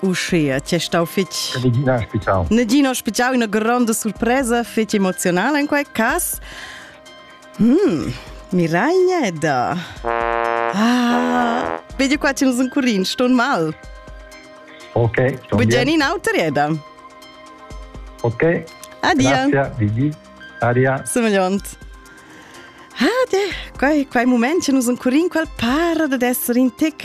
Uschia, ti è stau fitg... Negina ospitau. Negina ospitau, una grande surpresa, fetg emozional in quel cas. Mm, Miraglia è da... Ah, vedi qua c'è un curin, sto mal. Ok, sto bien. Bugiani in autorieda. Ok. Adia. Grazie, Didi. Aria. Semegliant. Ah, de, quei, quei moment c'è un curin qual para da essere in tic.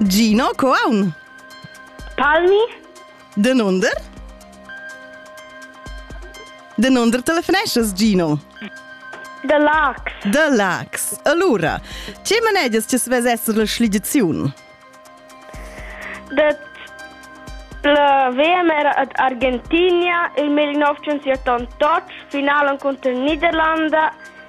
Gino, co aun? Palmi. Denunder? Denunder telefoneschas, Gino? De Lax. De Lax. Allura, tge manedias ti svess esser la schligiziun? De la VM era ad Argentina il 1978, finalen contro Niederlande